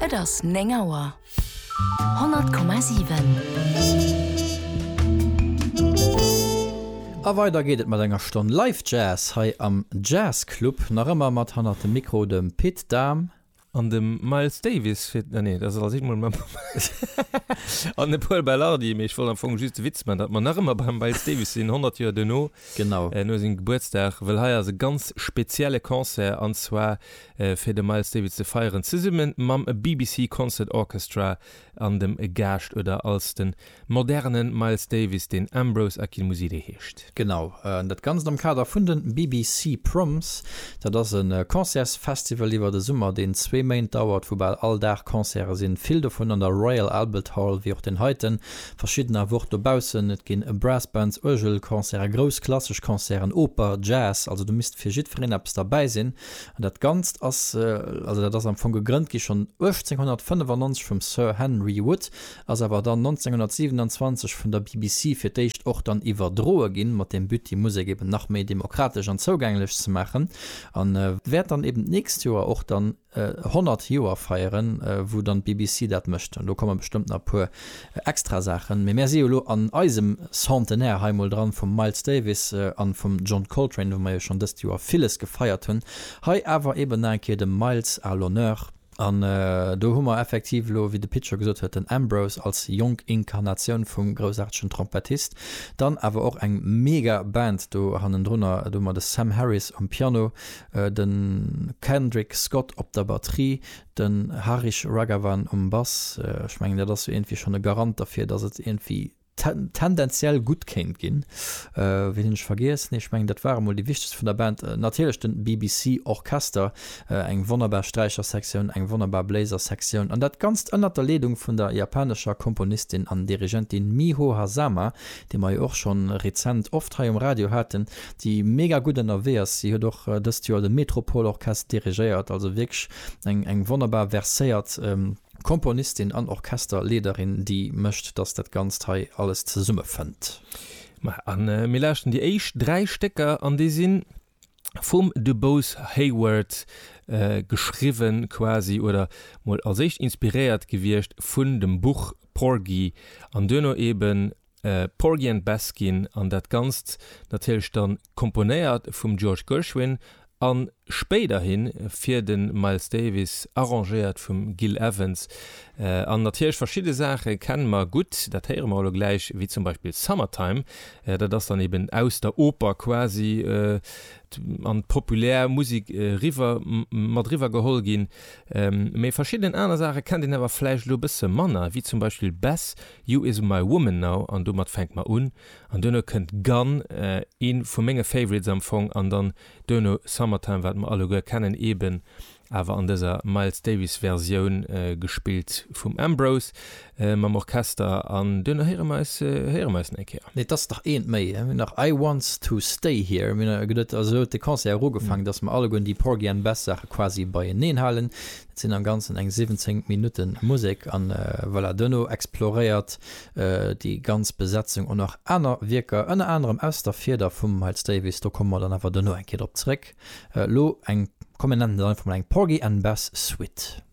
Et ass 9 Auer. 100,7. A weider geet et mat enger Stonn Live Jazz hei am Jazzclub. Nach ëmmer mat hannert dem Mikro dem Pit Dahm. An dem Miles Davis fir. Ah nee, dat ass als eent mol mam. An dem Pol Belardi. Mee ech wollt am Fong just de Witz man, datt mer nach ëmmer beim Miles Davis sinn, 100 Joer duerno. Genau. Äh, no sengem Gebuertsdag, well hei ass e ganz spezielle Concert, an zwar fir de Miles Davis ze feieren, zesumme mam BBC Concert Orchestra an dem Gaascht, oder als de moderne Miles Davis, deen Ambrose Akinmusire heescht. Genau, dat Ganzt am Kader vun de BBC Proms. Dat ass e Concertsfestival iwwer de Summer, deen zwee Méint dauert, wou bal all Dag Concerte sinn, vill dovun an der Royal Albert Hall, wéi och deen heiten. verschidden awer och dobaussen, et ginn Brassbands, Uergelconcerten, grouss klassesch Concerten, Oper, Jazz, also do misst fir jiddwereen eppes derbäi sinn an dat Ganzt ass, also dat ass am Fong gegrënnt gi schonn 1895 vum Sir Henry Wood, ass awer dann 1927 vun der BBC fir d'éischt och dann iwwerdroe ginn, mat dem But déi Musek eben nach méi demokratesch an zougänglech ze maachen, a wäert dann eben d'nächst Joer och dann. 100 Joer feieren, wou dann d'BBC dat mécht, an do komme bestëmmt nach e puer extra Saachen. Mee mär si jo elo an eisem Centenaire hei mol dran vum Miles Davis an vum John Coltrane, wou mer jo schonn dëst Joer villes gefeiert hunn. Hei awer eben nach eng Kéier dem Miles à l'honneur. An do hu mer effektiv elo, wéi de Pit scho gesot huet, den Ambrose als jonk Inkarnatioun vum groussaartegen Trompettist. Dann awer och eng mega Band do hannendrunner, do hu mer de Sam Harris um Piano, de Kendrick Scott op der Batterie, de Harish Raghavan um Bass, ech mengen dat ass jo iergendwéi schonn e Garant derfir, datt et iergendwéi tendenziell gutt kéint ginn. Wien hunn ech vergiess? Nee, ech mengen dat ware mol déi wichtegst vun der Band. Natierlech de BBC Orchester, eng wonnerbar Sträichersektioun, eng wonnerbar Bléisersektioun an dat Ganzt ënnert der Leedung vun der japanescher Komponistin an Dirigentin Miho Hazama, déi mer jo och schonn rezent oft hei um Radio haten. déi mega gutt ënnerwee ass. Si huet och dëst Joer de Metropole Orchestre dirigéiert, also wierklech eng eng wonnerbar verséiert Komponistin an Orchesterleederin, déi mécht, datt dat Ganzt hei alles zesummefënnt. Ma a mir lauschten déi éischt dräi Stécker an déi si vum Dubose Heyward geschriwwen quasi oder mol als éischt inspiréiert gewiescht vun dem Buch Porgy an duerno eeben Porgy and Bess ginn an dat Ganzt natierlech dann komponéiert vum George Gershwin a spéiderhi fir de Miles Davis arrangéiert vum Gil Evans. An natierlech verschidde Saache kenne mer gutt, dat héiere mer elo gläich, wéi zum Beispill Summertime, dat ass dann eben aus der Oper quasi an d'populär Musek eriwwer, mat eriwwer geholl ginn. Mee verschidden aner Saache kennt een awer vläicht elo e bësse manner, wéi zum Beispill Bess You is my woman now an domat fänkt mer un an duerno kënnt Gone, ee vu menge Favorites am Fong an dann duerno Summertime wat mer alleguer kennen, eben awer an dëser Miles Davis Versioun gespillt vum Ambrose mam Orchester an duerno héiere mer eis héiere mer eis nach eng Kéier. Nee, et ass nach eent méi, mir hunn nach I Want to Stay Here, mir hunn, also esou huet de Concert erugefaangen, datt mer alleguer déi Porgy and Bess Saache quasi beieneen halen, Et sinn am ganzen eng 17 Minutten Musek an voilà, duerno exploréiert déi ganz Besetzung och nach aner Wierker, ënner anerem aus der Fieder vum Miles Davis. Do komme mer dann awer duerno eng Kéier drop zréck. Elo eng, kommen nennen et einfach mol eng Porgy and Bess Suite.